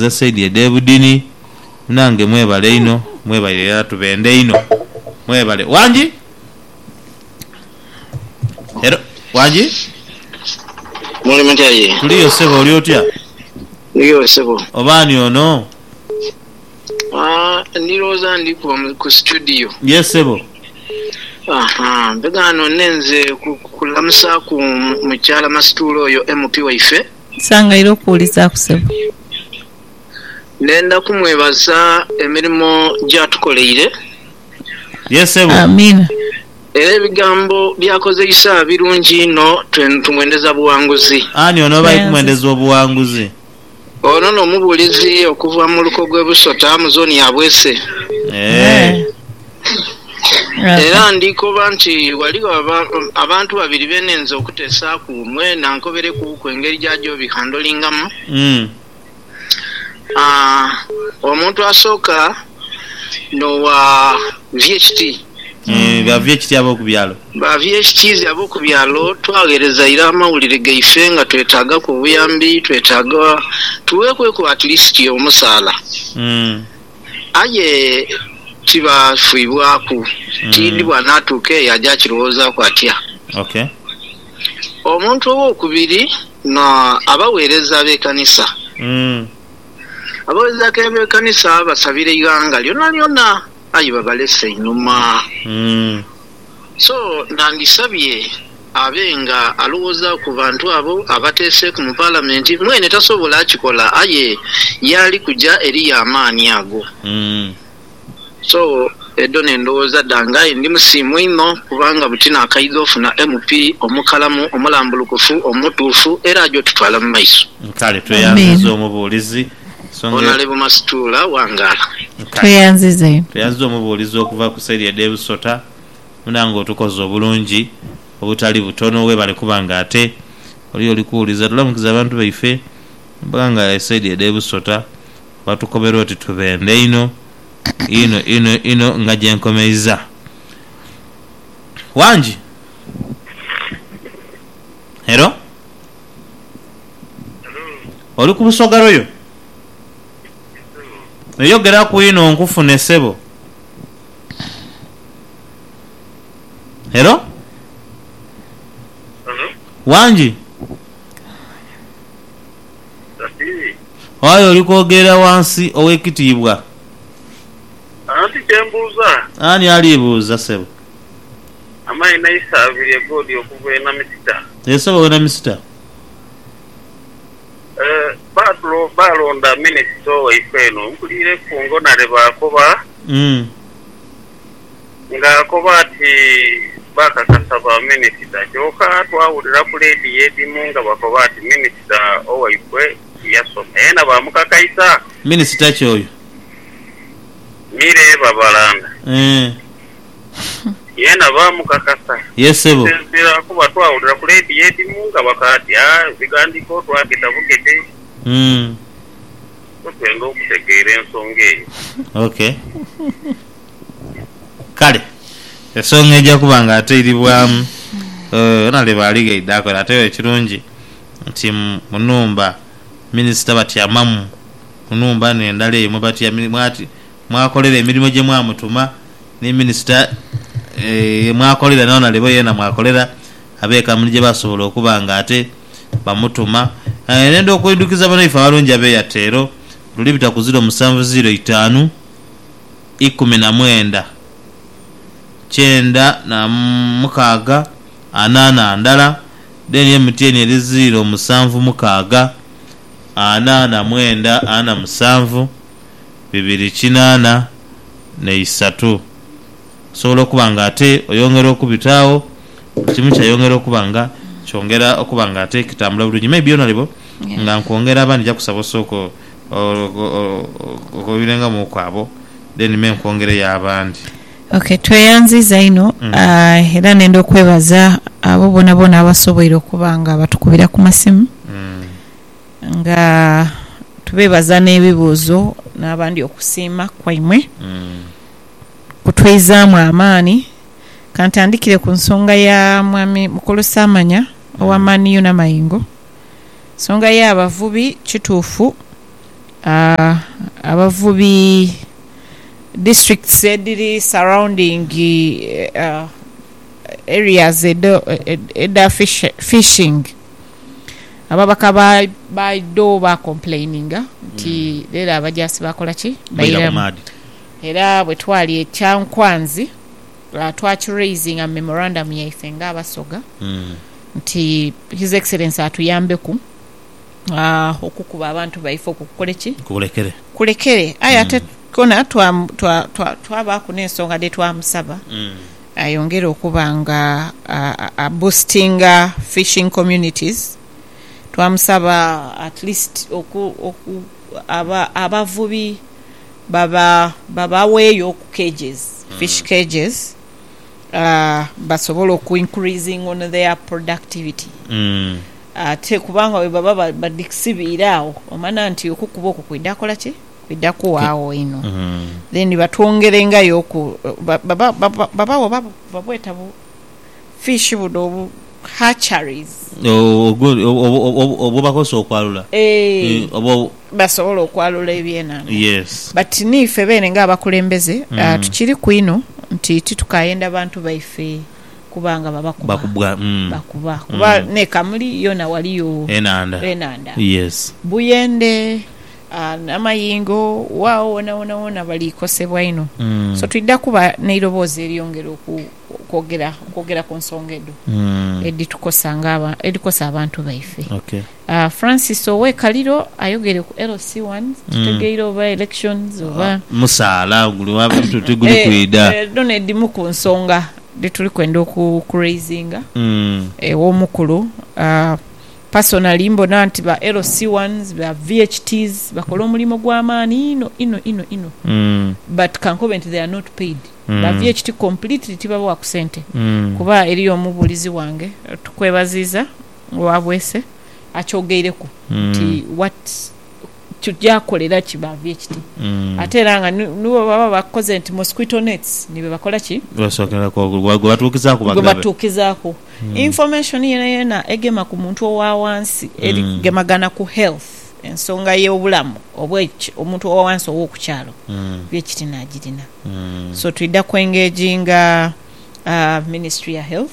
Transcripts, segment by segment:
Ezo side edhe budini munange mwebale inho mwebaire era tubenda inho mwebale wangi era wangi. Muli mutya ye? Tuliyo sebo oli otya? Ndiyo sebo. Oba ani ono? Aah ndirowoza ndi kuba ku studio. Yes sebo. Ahaa mbega none nze kulamusaku mukyala masituula oyo MP waife. Nsangaire okuwulizaaku sebo. Ndenda kumwebaza emirimo gy'atukoleire. Ye sebo. Amiina. Era ebigambo by'akozeisa birungi inho. Twen tumwendeza buwanguzi. Ani ono bali kumwendeza obuwanguzi? Ono no mubuulizi okuva mu luko gw'e Busota mu zooni ya Bwese. Eeh. Era ndi koba nti ghaligho abantu babiri be ninze okuteesaaku, mwena nkoberekuuku engeri gya gyobihandolingamu. Omuntu asooka n'owa VHT. Ba VHT ab'oku byalo. Ba VHTs ab'oku byalo twagheereza ira amawulire gaife nga twetaagaku obuyambi, twetaaga tuweekweku at least omusaala. Aye kiba kifwibwaku, tiidhi bw'anaatuuka eyo aja kirowoozaaku atya. Ok. Omuntu ow'okubiri n'abagheereza b'ekanisa. Abagheereza b'ekanisa basabira eighanga lyonalyona, aye babalesa einhuma. So nandisabye abe nga alowooza ku bantu abo abateeseeku mu Palamenti. Mwene tasobola kikola aye yaali kuja eriyo amaani ago. So edho n'endowooza dhange aye ndi musiimu inho kubanga buti naakaidha ofuna MP omukalamu, omulambulukufu, omutuufu era aja otutwala mu maiso. Kale tweyanziza omubuulizi. Nsonga ya. Tweyanziza omubuulizi okuva ku saidi edh'e Busota. Munange otukoze obulungi obutali butono webale kuba nga ate oli oli kuwuliza tulamukiza abantu baife abaga nga esaidi edh'e Busota batukobera oti tubendhe inho inho inho inho nga gyenkomeiza. Wangi. Hello. Oli ku Busoga royal? Eyogeraku inho nkufune sebo. Hello? Wangi? Aye oli kwogerera wansi owekitiibwa. Ani ali buuza sebo? Amaina aise abiri egoodi okuva e Namisita. Eyo saba we Namisita. Eeh baalonda minisita owaife eno mpulire kungonare baakoba nga akoba ati baakakasa ba minisita kyoka twawulira ku lediyo edhimu nga bakoba ati minisita owaife yasoma yena baamukakaisa. Minisita ki oyo? Milly Babalanda. Eeh Yeena baamukakasa. Yee ssebo. Okusinziira kuba twawulira ku leediyo edhimu nga bakaatya ebighandiiko twageta bugete ku twenge okutegeera ensonga eyo. Ok. Kale esonga eja kuba nga ateiribwamu yona leba alighaidha akole ate yo ekirungi nti mu nhumba minisita batyamamu mu nhumba n'endala eyo mwebatya mwakolera emirimo gye mwamutuma, ni minisita ye mwakolera ni Onalebo yeena mwakolera, abe kampuni gye basobola okuba nga ate bamutuma. Aye nenda okuidhukiza banaife abalungi abe Airtel, luli bita ku ziro musanvu ziro itaanu ikumi na mwenda kyenda na mukaaga ana na ndala, then MTN eri ziro musanvu mukaaga ana na mwenda ana musanvu. bibiri kinaana na isatu. Osobola okuba nga ate oyongera okubita agho, buli kimu kyayongera okuba nga kyongera okuba nga ate kitambula bulungi. Maybe yonalebo nga nkwongera aba ndija kusaba osooke oghoghobirengamuuku abo then me nkwongereyo abandi. Ok, tweyanziza inho era nenda okwebaza abo boonaboona abasoboire okuba nga batukubira ku masimu. nga tubeebaza n'ebibuuzo n'abandi okusiima kwaimwe kutwizaamu amaani. Ka ntandikire ku nsonga ya Mwami Mukulu Saamanya owa Man U n'amayengo. Ensonga y'abavubi, kituufu abavubi districts edhiri surrounding areas edha fishing. Ababaka ba baidho ba complaininga nti lero abajaasi baakola ki? Baira ku maadhi. Era bwe twali e Kyankwanzi twaki raisinga mu memorandum yaife nga Abasoga nti His Excellency atuyambeku okukuba abantu baife okwo kukole ki? Kulekere. Kulekere. Aye ate kona twabaaku n'ensonga dhe twamusaba. Ayongere okuba nga a boostinga fishing communities. Twamusaba at least oku oku abavubi baba babaweeyo ku cages, fish cages, basobole oku increasing on their productivity ate kubanga bwebaba badhisibiire agho omanya nti okukuba okwo kwidha kola ki? bidha kuwaagho inho then batwongerengayo oku babagho oba babweta bu fish buno obu hatcheries obwebakozesa okwalula basobole okwalula ebyenhandha but niife beene nga abakulembeze tukiriku inho nti titukayenda bantu baife kuba nga babakuba bakuba kuba nekamuli yoona waliyo enhandha buyende. N'amayingo waagho wonawona wona baliikosebwa inho. So twidha kuba n'eiroboozi eryongera okwogera, okwogera ku nsonga edho edhitukosa nga, edhikosa abantu baife. Francis ow'e Kaliro ayogeire ku LC one, titutegeire oba elections oba. Musaala guli wa bantu oti guli kwidha. Edho n'edhimu ku nsonga dhetuli kwenda oku raisinga ew'omukulu. Personally mbona nti ba LC ones, ba VHTs bakola omulimo gwa maani inho inho inho inho but kankobe nti they are not paid. Ba VHT completely tibabowaku sente kuba eriyo omubuulizi wange, tukwebaziiza owa Bweese, akyogeireku nti what. Tuja kolera ki ba vye kiti ate era nga ni ni bwe baba bakoze nti mosquito nets ni bwe bakola ki? Basokera ku gwe batuukizaaku gwe bagabe. batuukizaaku information yonayona egema ku muntu owa wansi eri kugemagana ku health, ensonga y'obulamu obw'eki omuntu owa wansi ow'oku kyalo vye kiti naagirina. So twidha ku engaginga Ministry ya Health.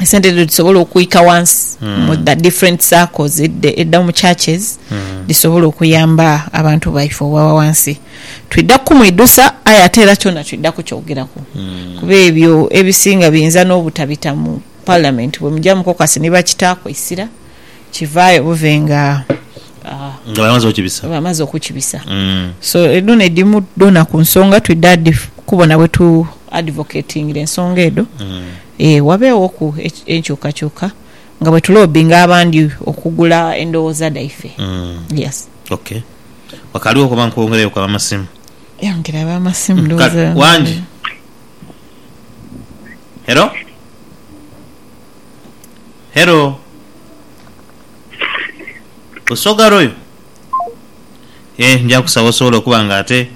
esente edho dhisobole okwika wansi mu the different circles edda edda mu churches dhisobole okuyamba abantu baife obwa wansi. Twidha kukumwidhusa aye ate era kyona twidha kukyogeraku kuba ebyo ebisinga biyinza n'obutabita mu parliament bwe mugya mu caucus ni bakitaaku eisira. Kivaayo buve nga. Nga bamaze okibisa. Bamaze okukibisa. So edho n'edhimu dhoona ku nsonga twidha dhi kubona bwe tu advocatingira ensonga edho ee wabeeghoku enkyukakyuka nga bwe tuloobinga abandi okugula endhoghoza dhaife. Yes. Ok. Wakaalighoku oba nkwongereyoku abamasimu? Yongera abamasimu ndhoghoza. Kale, Wangi? Hello? Hello Lusoga Royal eeh nja kusaba osobole okuba nga ate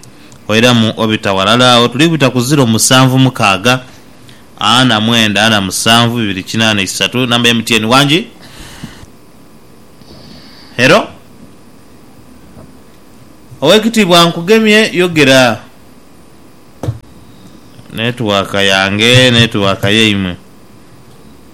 oiramu obita ghalala agho tuli kubita ku ziro musanvu mukaaga ana mwenda ana musanvu bibiri kinaana isatu number ya MTN wangi Hello Owekitiibwa nkugemye yogera Network yange network yaimwe.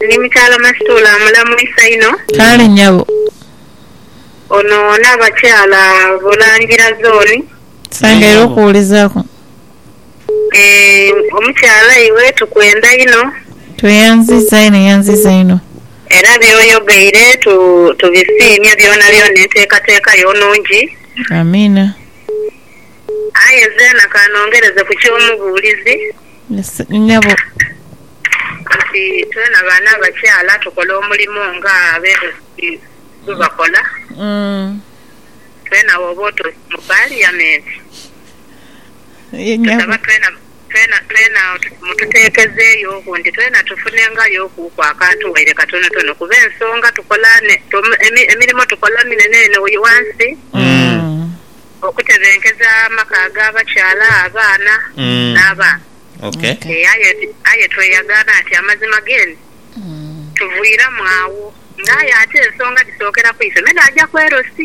Ni mukyala Masituula amulamwisa inho. Kale nyabo. Ono n'abakyala Bulangira zooni. Kisangaire okuwulizaaku. Eeh omukyala iwe tukwenda inho. Tweyanziza inho yanziza inho. Era by'oyogeire tubisiimye byonabyona enteekateeka yo nnungi. Amiina. Aye zeena ka nongereze ku ky'omubuulizi. nyabo. Nti twena baana abakyala tukola omulimo nga abeebembezi bwebakola. Twena woba oti mu Paliyamenti, tusaba twena twena twena mututeekezeeyo ku nti twena tufunengayooku ku akantu waire katonotono kuba ensonga tukola ne, emirimo tukola minene eno wansi. Okutebenkeza amaka ag'abakyala, abaana, n'abaana. Ee, aye, aye tweyagaana nti amazima geene tuviiramu agho. Nga aye ate ensonga dhisookera ku ife, me dhaaja ku LC.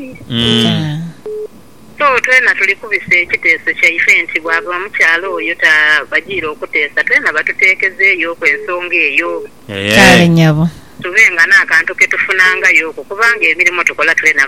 So, twena tuli kubisa ekiteeso kyaife nti bwaba omukyala oyo tabajiire okuteesa, twena batuteekezeyooku ensonga eyo. Kale nyabo. Tube nga n'akantu ke tufunangayoku, kubanga emirimo tukola twena.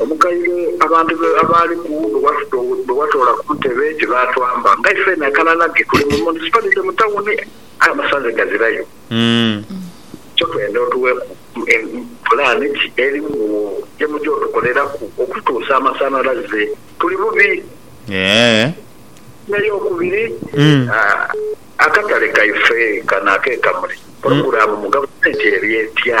Omukaire abantu be abaaliku bwe watoola ku ntebe tibaatwamba. Nga ifeena akananage tuli mu munisipalite mu tawuni aye amasanze gazirayo. Kyo twenda otuweeku pulaani ki erimu wo gye muja otukoleraku okutuusa amasanhalaze. Tuli bubi. N'eyokubiri, akatale kaife kano ak'e Kamuli pulogulaamu mu gavumenti eri etya?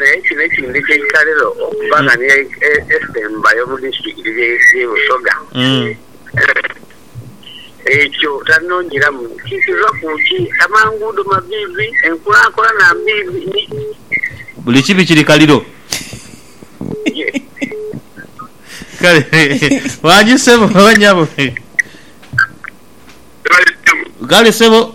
Naye kino ekindhika eitalero okuba nga niyo esembayo mu disitirikiti y'e Busoga, ekyo tanongeramu ki kiva ku ki? Amanguudo maviivi, enkulakulana mbiibi ni. Buli kibi kiri kaliro. Kale wangi ssebo oba nyabo. Kale ssebo.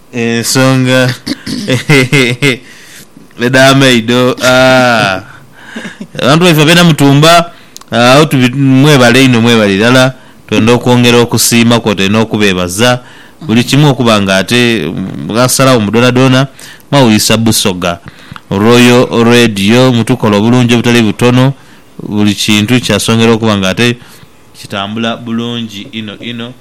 Ensonga edha maido abantu baife abena mutumba agho tubi mwebale inho mwebale irala twenda okwongera okusiima kwotaire nokubebaza buli kimu okuba nga ate mwasalagho mu dona dona mwawulisa Busoga Royal Radio mutukola obulungi obutali butono buli kintu kyasongera okuba nga ate kitambula bulungi inho inho.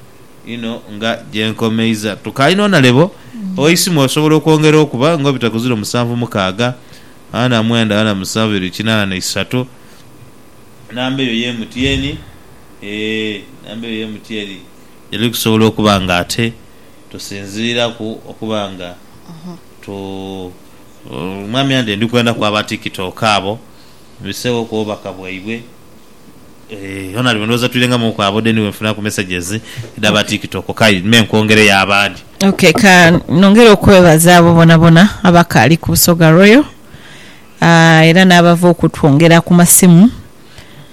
Ino nga gye nkomeiza. Tukaalina onalebo oisimu osobola okwongera okuba nga obitaku ziro musanvu mukaaga ana mwenda ana musanvu biri kinaana na isatu namba eyo ye MTN ee namba eyo ye MTN gyetuli kusobola okuba nga ate tusinziiraku okuba nga tu Mwami Andy ndi kwenda ku aba tiktok abo mbiseewo ku bubaka bwaibwe. Eeh onali we ndhowooza twirengamuuku abo deni we nfuniraku messages edhaba tiktok kayi me nkwongereyo abandi. Ok ka nongere okwebaza abo bonabona abakaali ku Busoga Royal aah era n'abava okutwongera ku masimu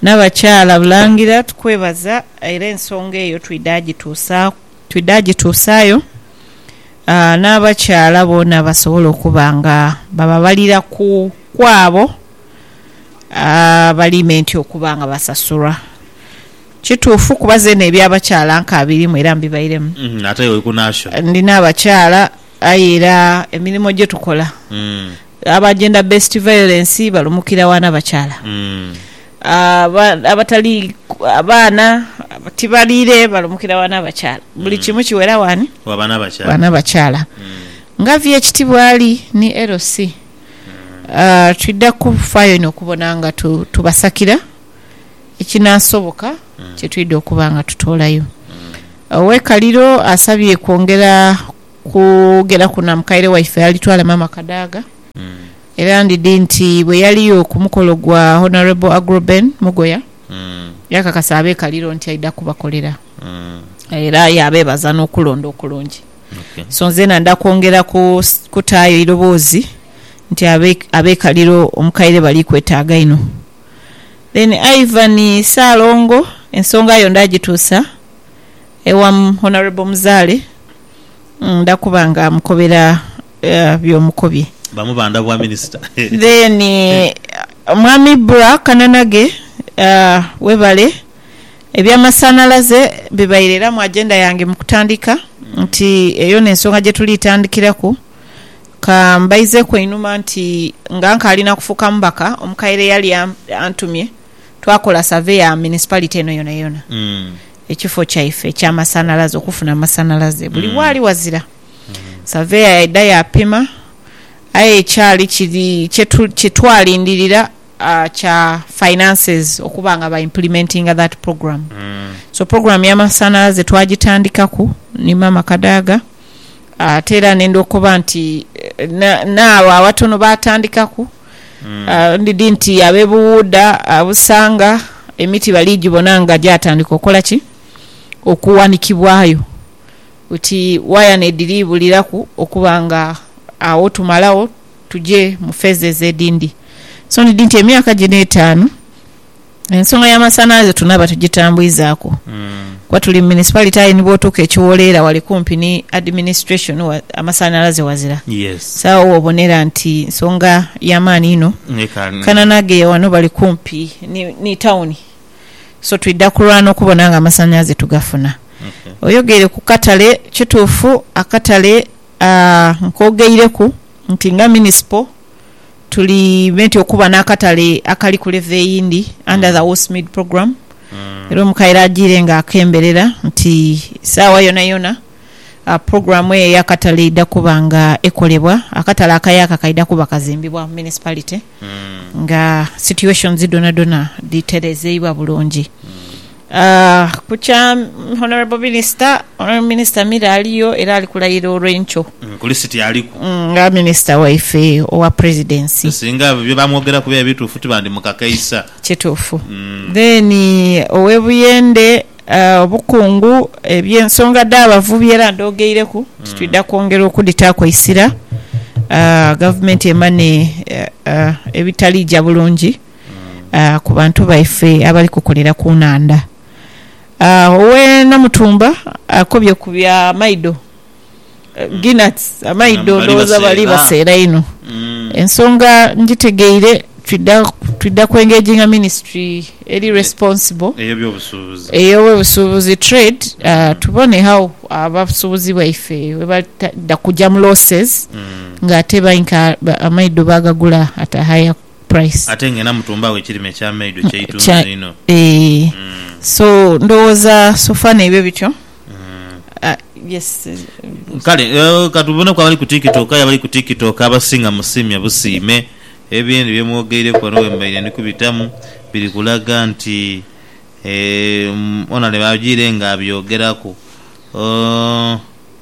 n'abakyala Bulangira tukwebaza era ensonga eyo twidha gituusa twidha gituusaayo aah n'abakyala boona basobole okuba nga bababalira ku kwabo. Abaliimenti okuba nga basasulwa. Kituufu kuba zeena eby'abakyala nkaabirimu era mbibairemu. Ate iwe oli ku Nasho? Ndi n'abakyala aye era emirimo gye tukola aba Gender Based Violence balumukira wa n'abakyala. Abatali abaana tibaliire balumukira wa n'abakyala. Buli kimu kiwera wani? Wa n'abakyala. Nga vvy. Ekitibwa Ali ni LC. twidha kufaayo inho okubona nga tubasakira ekinaasoboka kye twidha okuba nga tutoolayo. Ow'eikaliro asabye kwongera kwogeraku na mukaire waife alitwala Maama Kadaga era ndidhi nti bwe yaliyo ku mukolo gwa Honourable Agroben Mugoya yakakasa ab'eikaliro nti aidha kubakolera era yaabeebaza n'okulonda okulungi. So nzena nda kwongera kutaayo eiroboozi nti abekaliro omukaire bali kwetaaga inho. Then Ivan Ssalongo ensonga yo nda gituusa ewa Honourable Muzaale nda kuba nga mukobera byomukobye. Bamu banda bwa Minister. Then Mwami Bra Kananage webale. Eby'amasanhalaze bibaire era mu agenda yange mu kutandika nti eyo n'ensonga gye tuli tandikiraku. Ka mbaizeku einhuma nti nga nkaali na kufuuka mubaka, omukaire eyali antumye twakola save ya municipality eno yonayona, ekifo kyaife eky'amasanhalaze, okufuna amasanhalaze buli waali wazira. Saveya yaidha yaapima aye ekyali kiri kye twalindirira. kya finances okuba nga ba implimentinga that program so program ya masanalaze twagitandikaku ni maama Kadaga ate era nenda okoba nti naabo abatono batandikaku ndidi nti abe Buwuuda, Busanga emiti bali gibona nga gyatandika okola ki? okuwanikibwayo oti waya nediri buliraku okuba nga agho tumalagho. Tuje mu feeza ezo edindi. So nidhi nti emyaka gino etaanu ensonga ya masanhalaze tunaba tugitambwizaku kuba tuli mu municipality aye ni bwotuuka e Kiwoleera wali kumpi ni administration amasanhalaze wazira. Yes. So agho wobonera nti nsonga ya maani inho. Ekaali. Kananage wano bali kumpi ni, ni town. So twidha kulwana okubona nga amasanhalaze tugafuna. Okay. Oyogeire ku katale, kituufu akatale. Nkogeireku nti nga munisipo tuli benti okuba n'akatale akali ku levo eyindi under the Westmead Program era omukaire ajiire nga akemberera nti saawa yonayona pulogulamu eyo ey'akatale eidha kuba nga ekolebwa. Akatale akayaka kaidha kuba kazimbibwa mu munisipalite nga situations dhonadhona dhiterezeibwa bulungi. Ku kya Honourable Minister, Honourable Minister Mira aliyo era ali kulayira olwenkyo. Kuli city aliku. Nga Minister waife owa Presidency. Singa byo bamwogeraku biba bituufu tibandimukakaisa. Kituufu. Then owe Buyende, Obukungu, eby'ensonga dh'abavubi era ndhogeireku nti twidha kwongera okudhitaaku eisira, gavumenti emane ebitaliija bulungi. ku bantu baife abali kukolera ku nhandha. Ow'e Namutumba akobye ku bya maido, geenuts, amaido ndhoghoza bali baseera inho. Ensonga ngitegeire, twidha kwengeginga minisitule eri responsible, ey'ebyobusuubuzi, trade, tubone how abasuubuzi baife bwebadha kugya mu losses ng'ate amaido baagagula at a higher. price. Ate nga ena mutumbagho ekirime ekya maido kyeitunzi inho eeh so ndhoghoza sofa neibyo bityo yes. Kale katuboneku abali ku tiktok aye abali ku tiktok abasinga musiimye busiime ebyendhi byemwogeireku ghano bwembaire ndi kubitamu biri kulaga nti eeh Onalebo ajiire nga abyogeraku ooh.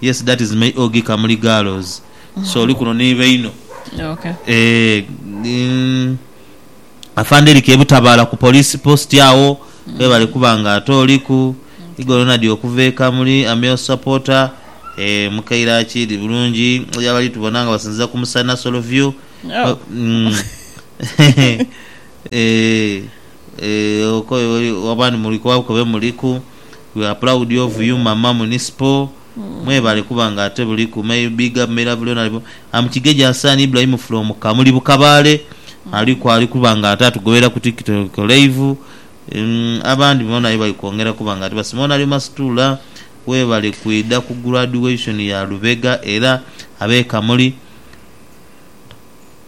Yes that is my OG Kamuli girls so oli kuno ni baino eeh Afande Eric Ebutabala ku police post agho webale kuba nga ate oliku Igo Ronald okuva e Kamuli am your supporter eeh mukaire akidi bulungi eri abali tubona nga basinziza ku musana solo view eeh eeh okoye wabandi muli kuba bukobe muliku. We are proud of you mama municipal mwebale kuba nga ate buliku may you big up may love Leonard am Kigege Hassan Ibrahim from Kamuli Bukabale aliku ali kuba nga ate atugobera ku tiktok live umm abandi bona aye bali kwongera kuba nga ate basiima Onalio Masitula webale kwidha ku graduation ya Lubega era abe Kamuli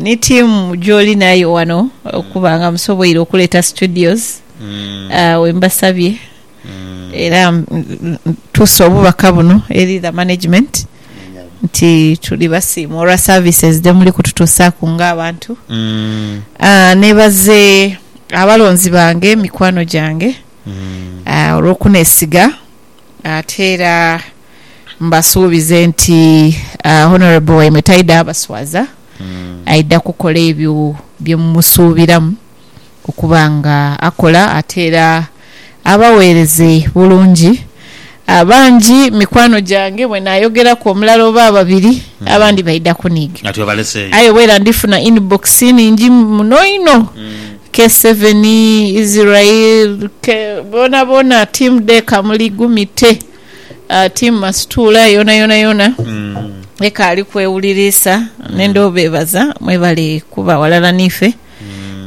Ni ttiimu gy'oli nayo wano okuba nga musoboire okuleeta studios wembasabye era ntuuse obubaka buno eri The Management nti tuli basiime olwa services dhemuli kututuusaaku nga abantu. Neebaze abalonzi bange, mikwano gyange olw'okunesiga ate era. Mbasuubize nti Honourable waimwe taidha abaswaza, aidha kukola ebyo bye mumusuubiramu okuba nga akola ate era abaweereze bulungi. Bangi mikwano gyange bwe naayogeraku omulala oba ababiri abandi baidha kuniiga aye obwera ndifuna inbox nhingi muno inho, K7, Israel, boonaboona, Team Deekamuli, Gumite. Ah, Team Masituula yonayona yona ekaali kwewuliriisa nenda obeebaza mwebali kuba ghalala niife.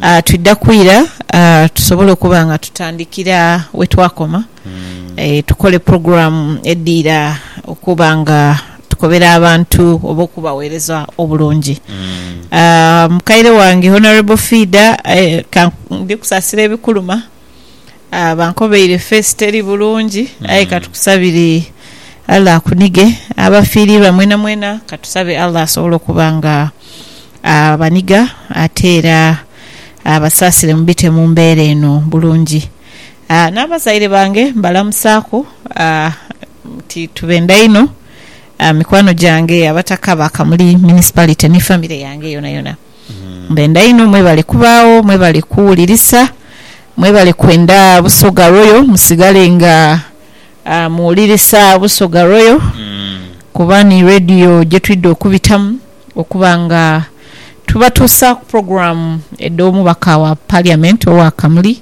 Ah, twidha kwira ah, tusobole okuba nga tutandikira wetwakoma eh, tukole program edhiira okuba nga tukobera abantu oba okubaweereza obulungi. Ah, mukaire wange Honourable Fiida eh, ka, ndi kusasira ebikuluma. Bankobaire face teri bulungi aye katukusabire Allah akunige. Abafiirirwa mwena mwena katusabe Allah asobole okuba nga abaniga ate era abasaasire mubite mu mbeera eno bulungi. N'abazaire bange mbalamusaaku nti tubenda inho. Mikwano gyange Abataka ba Kamuli Municipality ni famire yange yonayona. Mbenda inho mwebale kubaagho, mwebale kuwulirisa, mwebale kwenda Busoga Royal, musigale nga muwulirisa Busoga Royal kuba ni Radio gyetwidha okubitamu okuba nga tubatuusaaku pulogulaamu edh'omubaka wa Parliament owa Kamuli.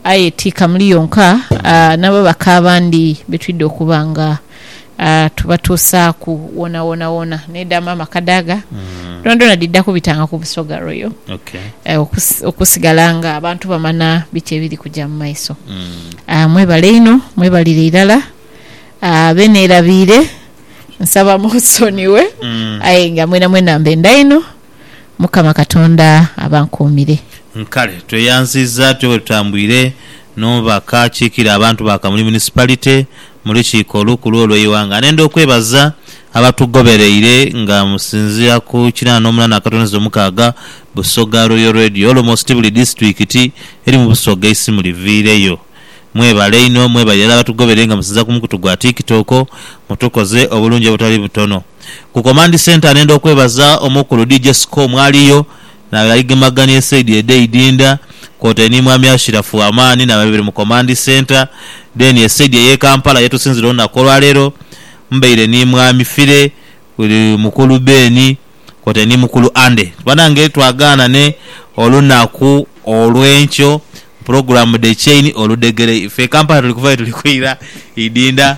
Aye ti kamuli yonka, n'ababaka abandi be twidha okuba nga tubatuusaaku woonawoonawona. N'edhaama amaka daaga dhoonadhoona dhidha kubitanga ku Busoga Royal okusigala ng'abantu bamanha biki ebiri kuja mu maiso. Mwebale inho, mwebalire irala. Be neerabiire nsaba munsonighe aye nga mwenamwena mbenda inho. Mukama Katonda abankuumire. Kale tweyanziza tube bwetutambwire n'omubaka akiikira abantu ba Kamuli Municipality mu lukiiko olukulu olw'eighanga. Anenda okwebaza abatugobereire nga musinziira ku kinaana omunana akatoneza omukaaga Busoga Royal Radio almost buli disitulikiti eri mu Busoga eisimu liviireyo. Mwebale inho, mwebalire irala abatugobereire nga musinziira ku mukutu gwa Tiktok, mutukoze obulungi obutali butono. Ku Command Centre nenda okwebaza Omukulu DJ Siko mwaliyo nawe yaigemagania esaidi edhe Idinda kwotaire ni Mwami Ashirafu Amaani nawe abaire mu Command Centre then esaidi eye Kampala yetusinzira olunaku olwaleero mbaire ni Mwami Fire, Mukulu Ben kwotaire ni Mukulu Andy. Banange twagaanane olunaku olwenkyo program the chain oludhegere ife e Kampala tuli kuvayo tuli kwira Idinda.